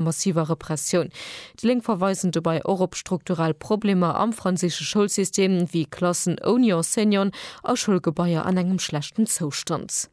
massiver Repressioun. Déi Lénk verweisen dobei och op strukturell Problemer am franséische Schoulsystem, wéi Klassen ouni Enseignant a Schoulgebaier an engem schlechten Zoustand.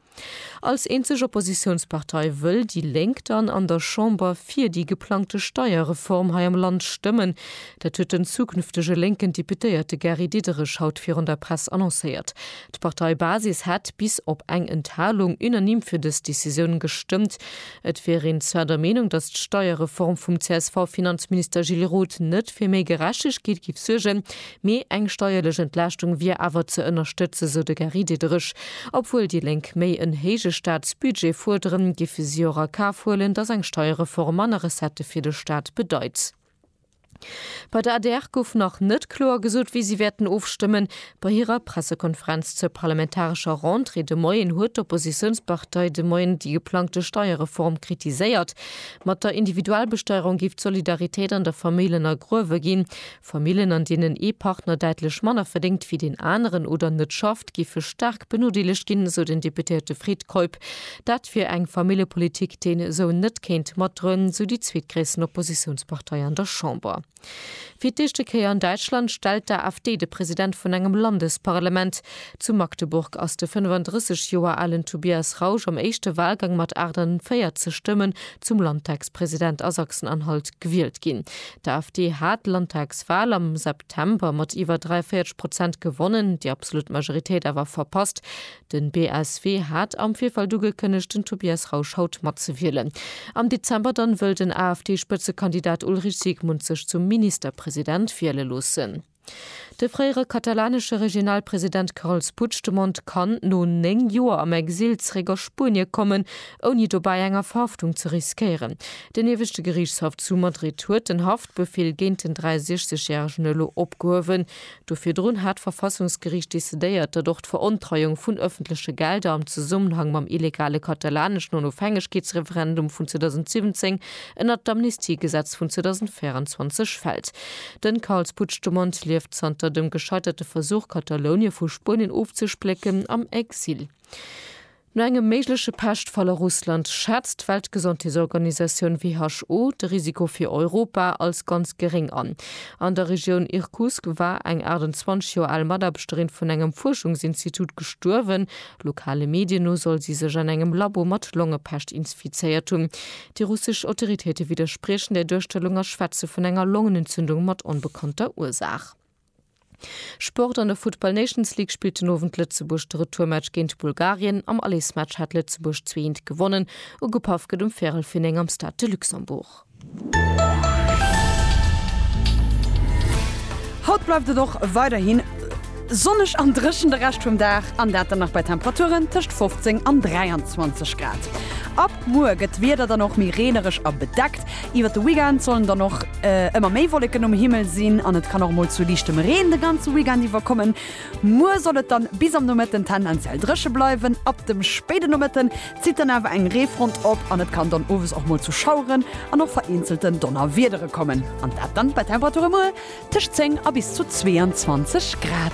Als eenzeg Oppositiounspartei wëll déi Lénk dann an der Chamber fir déi geplangte Steierreform hei am Land stëmmen. Dat huet den zukünftege lénken Deputéierte Gary Diderich haut virun der Press annoncéiert. D'Parteibasis hätt bis op eng Enthalung unanime fir dës Decisioun gestëmmt. Et wier een zwar der Meenung, datt d'Steierreform vum CSV-Finanzminister Gilles Roth net fir méi Gerechtegkeet géif suergen, mee eng steierlech Entlaaschtung wier awer ze ënnerstëtzen, sou de Gary Diderich. Obwuel déi Lénk méi en héije Staatsbudget fuerderen, géife si och a Kaf huelen, datt eng Steierreform manner Recettë fir de Staat bedeit. Bei der adr gouf nach net kloer gesot, wéi si wäerten ofstëmmen. Bei hirer Pressekonferenz zur parlamentarescher Rentrée de Moien huet d'Oppositiounspartei de Moien déi geplangte Steierreform kritiséiert. Mat der Individualbesteierung géif d'Solidaritéit an der Famill ënnergruewe ginn. Famillen, an deenen ee Partner däitlech manner verdéngt wéi deen aneren oder net schafft, Geschäft géife staark benodeelegt ginn, esou den Deputéierte Fred Keup. Dat wier eng Familljepolitik, déi een esou net kéint matdroen, esou déi zweetgréissten Oppositiounspartei an der Chamber. Fir d'éischte Kéier an Däitschland stellt d'AfD de President vun engem Landesparlement. Zu Magdeburg ass de 35 Joer alen Tobias Rausch am éischte Walgang mat 48 Stëmmen zum Landtagspresident a Sachsen-Anhalt gewielt ginn. D'AfD hat d'Landtagswal am September mat iwwer 43 Prozent gewonnen, déi absolut Majoritéit awer verpasst. Den BSW hat am Virfeld ugekënnegt, den Tobias Rausch haut matzewielen. Am Dezember dann wëll den AfD-Spëtzekandidat Ulrich Siegmund sech zum Ministerpresident wiele loossen. De fréiere katalanesche Regionalpresident Carles Puigdemont kann no 9 Joer am Exil zeréck a Spuenie kommen, ouni dobäi enger Verhaftung ze riskéieren. Den Ieweschte Geriichtshaff zu Madrid huet den Haftbefeel géint den 63 järegen elo opgehuewen. Do virdrun hat d'Verfassungsgeriicht decidéiert, datt och d'Verontreiung vun ëffentleche Gelder am Zesummenhang mam illegale katalaneschen Onofhängegkeetsreferendum vun 2017 ënnert d'Amnistiegesetz vun 2024 fält. Den Carles Puigdemont lieft zanter dem gescheiterte Versuch, Katalounien vu Spuenien ofzesplécken, am Exil. No engem méigleche Peschtfall a Russland schätzt d'Weltgesondheetsorganisatioun WHO de Risiko fir Europa als ganz geréng an. An der Regioun Irkutsk war eng 28 Joer al Mataarbechterin vun engem Fuerschungsinstitut gestuerwen. Lokale Medien no soll si sech an engem Labo mat Longepescht insfizéiert hunn. Déi russesch Autoritéite widderspriechen där Duerstellung a schwätze vun enger Longenentzündung mat onbekannter Ursaach. Sport An der Futtball Nations League spillt den Owend Lëtzebuerg de Retourmatch géint Bulgarien. Am Allesmatch hat Lëtzebuerg zwee eent gewonnen. Ugepaff gëtt um Véirel vir 9 am Stade de Luxembourg. Haut bleift et och weiderhin. Sonneg an dréchen de Rescht vum Dag an dat dann nach bei Temperaturen tëscht 15 an 23 Grad. Ab muer gëtt d'Wieder dann och méi reenereg a bedeckt. Iwwert de Weekend sollen dann och ëmmer méi Wolleken um Himmel sinn an et kann och mol zu liichtem Reen de ganze Weekend iwwer kommen. Muer soll et dann bis am Nomëtten tendenziell dréche bleiwen, ab dem spéide Nomëtten Zitt dann awer eng Reefront op an et kann dann owes och mol zu Schaueren an och vereenzelten Donnerwiedere kommen an dat dann bei Temperature muer tëscht 10 a bis zu 22 Grad.